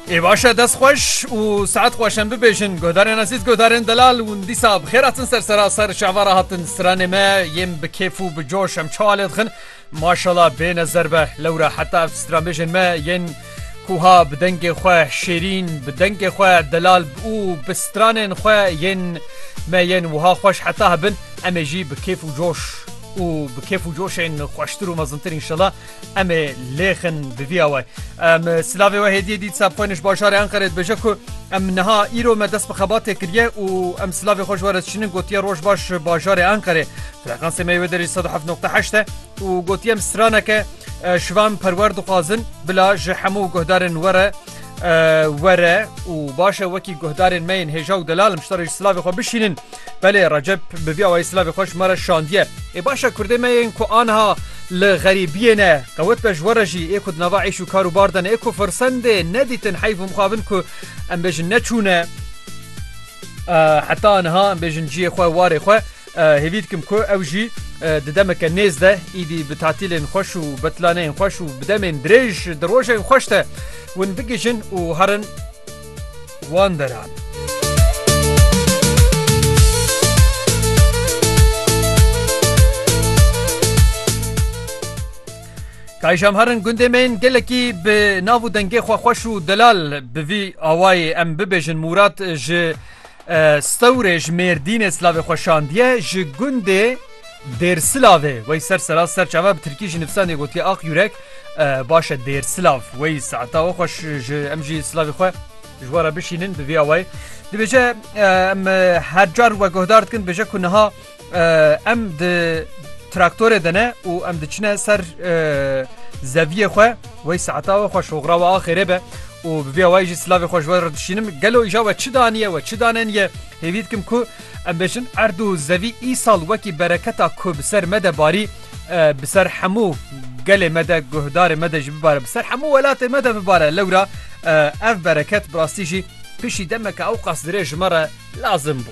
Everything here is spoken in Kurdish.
Ê baş e dest xweş û saet xweş em bibêjin guhdarên ezîz guhdarên delal hûn dîsa bi xêr hatin ser sera ser şavara hatin stranê me yên bi kêf û bi coş em çawa lê dixin maşala bê nezer be lewra heta ev stranbêjên me yên kuha bi dengê xwe şêrîn bi dengê xwe delal û bi stranên xwe yên me yên wiha xweş heta hebin em ê jî bi kêf û coş û bi kêf û coşên xweştir û mezintir înşela Em ê lêxin bi vî away. Em silavê we hêdiyê dît sabxwêniş bajarê Enqerê dibêje ku em niha îro me dest bi xebatê kiriye û em silavê xwe ji we re dişînin gotiye roj baş bajarê Enqerê. Frekansê me wê derê sed û heft noqta heşt e û gotiye em straneke şivan perwer dixwazin bila ji hemû guhdarên we re were û baş e wekî guhdarên me yên hêja û delal em ji te re ji silavê xwe bişînin. Belê Recep bi vî awayî silavê xwe ji me re şandiye. Ê baş e kurdê me yên ku aniha li xerîbiyê ne, qewet be ji we re jî ê ku di nava îş û kar û bar de ne, ê ku firsendê nedîtin heyf û mixabin ku em bêjin neçûne heta aniha em bêjin ciyê xwe warê xwe hêvî dikim ku ew jî di demeke nêz de îdî bi tatîlên xweş û betlaneyên xweş û bi demên dirêj di rojên xweş de win bigihîjin û herin wan deran. Kayşam herin gundê me yên gelekî bi nav û dengê xwe xweş û delal bi vî awayê em bibêjin Mûrat ji Stewrê ji Mêrdînê silavê xwe şandiye ji gundê Dêrsilavê wey ser sera serçava bi tirkî jî nivîsandê gotiye ax yurek baş e Dêrsilav wey saeta we xweş ji em jî silavê xwe ji we re bişînin bi vî awayê dibêje em her car we guhdar dikin dibêje ku niha em di traktorê de ne û em diçine ser zeviyê xwe wey saeta we xweş hoxra we axêrê be û bi vî awayê jî silavê xwe ji we re dişînim gelo îja we çi daniye we çi daneniye hêvî dikim ku Em bêjin erd û zevî îsal wekî bereketa ku bi ser me de barî bi ser hemû gelê me de guhdarê me de jî bibare bi ser hemû welatê me de bibare lewra ev bereket bi rastî jî pişî demeke ewqas dirêj ji me re lazim bû.